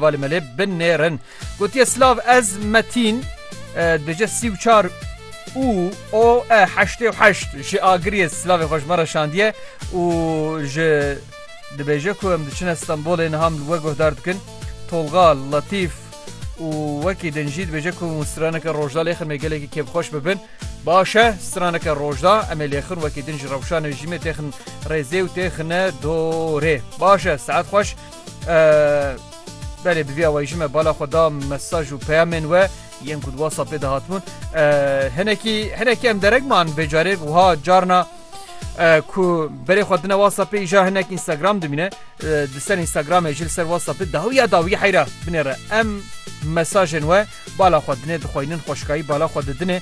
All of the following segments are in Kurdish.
Valê me lê binêrin. Gotiye silav ez metîn dije sî û çar û o e heştê û heşt ji agiriyê silavê xweş me re şandiye û ji dibêje ku em diçine Stenbolê niha min we guhdar dikin Tolga Letîf û wekî din jî dibêje ku straneke rojda lêxin me gelekî kêfxweş bibin başe straneke rojda em ê lêxin wekî din ji rewşanê jîmê têxin rêzê û têxine dorê başe saet xweş Belê bi vî awayî jî me bala xwe da mesaj û peyamên we yên ku di WhatsAppê de hatibûn. Hinekî hinekî em derek man vê carê wiha carna ku berê xwe dine WhatsAppê îja hinek Instagram dimîne di ser Instagramê jil ser WhatsAppê dawiya dawî heyra binêre em mesajên we bala xwe dinê dixwaynin xweşkayî bala xwe didinê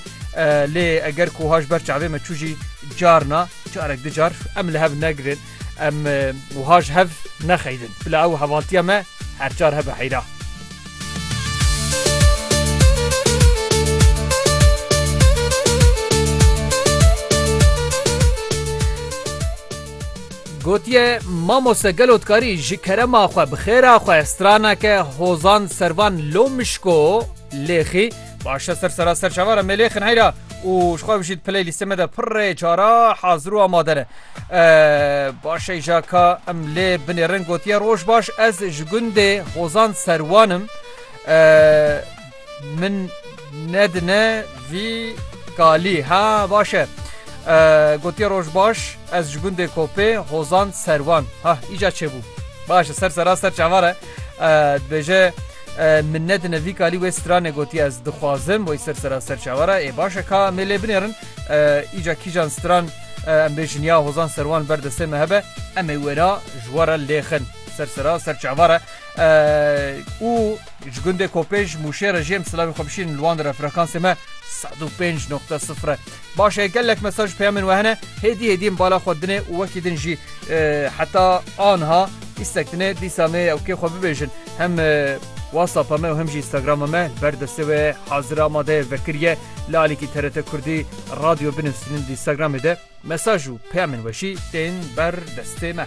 lê eger ku haş ber çavê me çû jî carna carek di car em li hev negirên Em wiha ji hev nexeydin. Bila ew hevaltiya me her çar hebe heyra. Gotiye mamoste gelo dikarî ji kerema xwe bi xêra xwe straneke hozan servan lomişko lêxî Başe ser sera ser çavara melêxin heyra û ji xwe bijît piley lîstê me de pirrê cara hazir û amade ne. Başe jaka em lê binêrin gotiye roj baş ez ji gundê hozan serwanim min nedine vî kalî ha başe. Gotiye roj baş ez ji gundê kopê hozan serwan ha îca çêbû. Başe ser sera ser çavara Dibêje min nedine vî kalî wê stranê gotiye ez dixwazim wê ser sera ser çawara ê baş e ka em ê lê binêrin îca kîjan stran em bêjin ya hozan serwan ber destê me hebe em ê wêra ji wara lêxin ser sera ser çavara û ji gundê kopêj mûşê re jê em silavê xwe bişînin li wan re frekansê me 105.0 Baş e gelek mesaj peyamên we hene hêdî hêdî em bala xwe dinê û wekî din jî heta anha îstek dinê dîsa me ew kê xwe bibêjin hem WhatsApp me û hem jî Instagram me ber destê we hazir amade vekiriye li alîkî TRT Kurdî radyo binivîsînin di Instagramê de mesaj û peyamên we jî tên ber destê me.